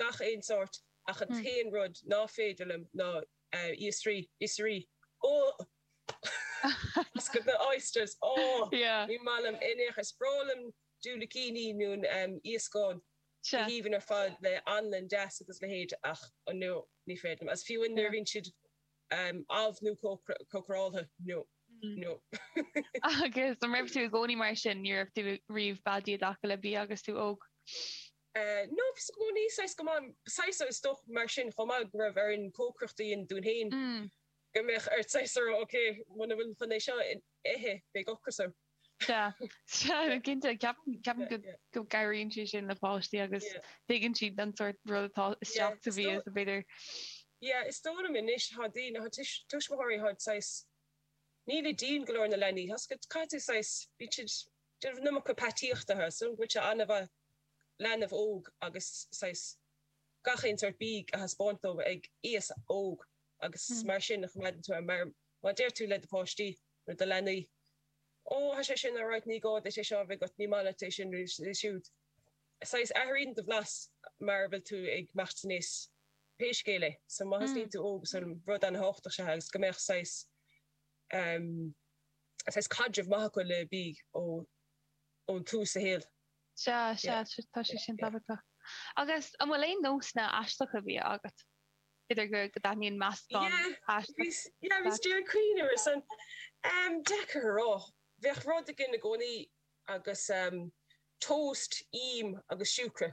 gach aon tsórt ach an t-aon rud ná féidir liom ná oisrí, oisrí, ohh! oysters, ohh! Ní maith liom in aon chor. Is breá liom diúilicíní nó iascáin go haoibhinn ar fad le hanlann deas agus leithéid ach ah no, ní féidir liom. Is fiú nuair a bhíonn siad amh nó cócaráltha, no, no. Agus an raibh tú i gcónaí mar sin, nó an raibh tú riamh beadaí i dtaca le bia agus tú óg? No ní, saghas go maith, saghas is dócha mar sin chomh maith go raibh orainn cócaireacht a dhéanamh dúinn féin go mbeadh ort saghas a rá ok, muna bhfuil tú chun é seo a ithe beidh ocras orm. Sea, sea, cinnte, ceapaim go gcabhraíonn sé sin le páistí agus tuigeann siad an sórt rud atá isteach sa bhia is b'fhéidir. Yeah, is dóigh liom anois thá daoine, thá tuismitheoirí thá saghas, nílid dian go leor ar na leanaí, tá's agat caithfidh tú saghas, bíonn siad ag déanamh iomarca peataíochta, tá's agat go bhfuil sé an-mhaith leanbh óg agus saghas gach aon sórt bia a thaispeáint dó ag aois óg agus mar sin a choimeádann tú é mar má deir tú le do pháistí nó do leanaí Ó tá sé sin alright ní gá duit é seo a bheith agat, ní maith leat é sin nó siúd. Saghas athraíonn do bhlas mar a bhfuil tú ag imeacht aníos pé scéal é so má thosnaíonn tú óg is an rud ana thábhachtach é agus go mbeadh saghas, em, saghas caidreamh maith acu le bia ó. ó thús a shaol. Sea, sea, tá sé sin tábhachtach. Agus an bhfuil aon nósanna aisteacha bia agat? B'fhéidir go dtaitníonn meascán aisteach. Yeah, bhíos ag cuimhneamh air san. Umm, deacair a rá. Bheadh rud againn i gcónaí agus umm toast, im agus siúcra.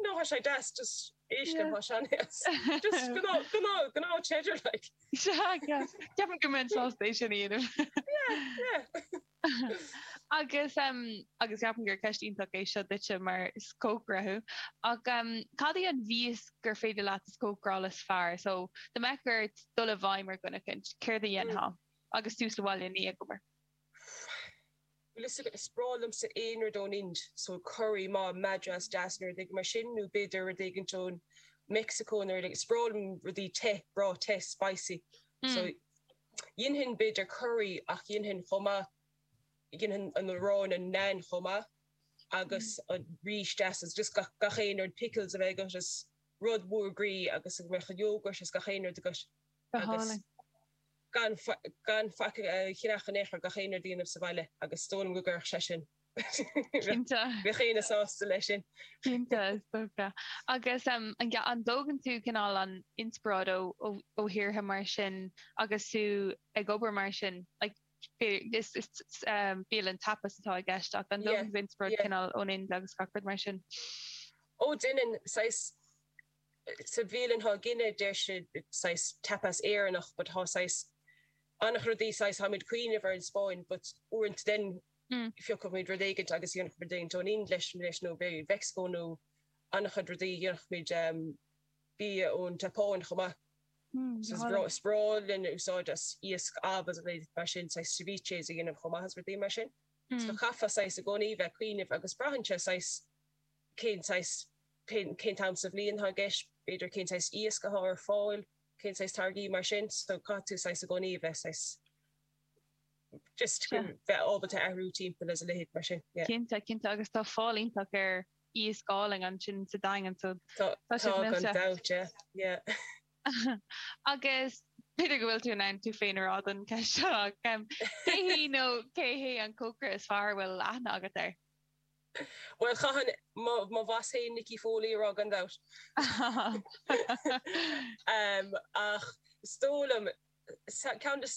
No thá sé deas just éisc an thá sean-aos. Just go no go no go no cheddar like. Sea yes ceapaim go mbeinn sásta é sin a dhéanamh. Yeah yeah. Agus em agus ceapaim gur ceist iontach é seo duitse mar is cócaire thú ach em cad í an mhias gur féidir leat a chócaráil is fearr so dá mbeadh ort dul i bhfeidhm ar dhuine éicint céard a dhéanfá agus tú sa bhaile ní ag obair. Bhfuil fhios agat, is breá liomsa aon rud ón Ind, so curry, mah, Madras, deas, nó rud éigin mar sin, nó b'fhéidir rud éigint ó Mexico nó rud éigint. Is breá liom rudaí te, breá te, spicy. Mm. So dhéanfainn b'fhéidir curry ach dhéanfainn chomh maith dhéanfainn an arán an naan chomh maith agus mm. an rís deas is just gach gach aon rud pickles a bheith agat is rud mór groí agus an mecha yoghurt is gach aon rud agus Go hálainn. Gan faic chreach an eachair gach aon rud a dhéanamh sa bhaile agus is dóigh liom go gcuirfeadh sé sin. Cinnte. Bheadh aoinne sásta leis sin. Cinnte, is dócha. Agus an dtógann tú cineál an inspioráid ó thíortha mar sin agus tú ag obair mar sin, like, is bialann tapas atá i gceist ach an dtógann tú inspioráid cineál ón Ind agus gach rud mar sin? Ó, déanann, saghas, sa bhialann cé go ndeir sé saghas tapas Éireannach but thá saghas ana-chuid rudaí saghas thá muid cuimhneamh ar an Spáinn but uaireanta then phiocfadh muid rud éigint agus dhéanfadh muid éigint ón Ind leis leis nó b'fhéidir Meicsiceo nó ana-chuid rudaí dhéanfadh muid ehm bia ón tSeapáin chomh maith so is breá is breá linn a úsáid as iasc amh is a leithéid mar sin saghas ceviches a dhéanamh chomh maith is rudaí mar sin so chaithfeá saghas i gcónaí bheith cuimhneamh agus braitheann sé saghas cén saghas, cén, cén t-am sa bhliain atá i gceist, b'fhéidir cén saghas iasc atá ar fáil, cén saghas táirgí mar sin, so caithfidh tú saghas i gcónaí a bheith saghas, just Sea. bheith ábalta a athrú timpeall is a leithéid mar sin, yeah. Cinnte, cinnte, agus tá fáil iontach ar iasc álainn ansin sa Daingean, so Tá, tá tá, siad gan millte. dabht, yeah, yeah. Agus b'fhéidir go bhfuil tú in ann tú féin a rá don cheist seo, ach cé hí nó cé hé an cócaire is fearr a bhfuil aithne agat air? Bhuel, chaithfinn mo bhoss féin Nicky Foley a rá gan dabht. Ach is dóigh liom, ceann des.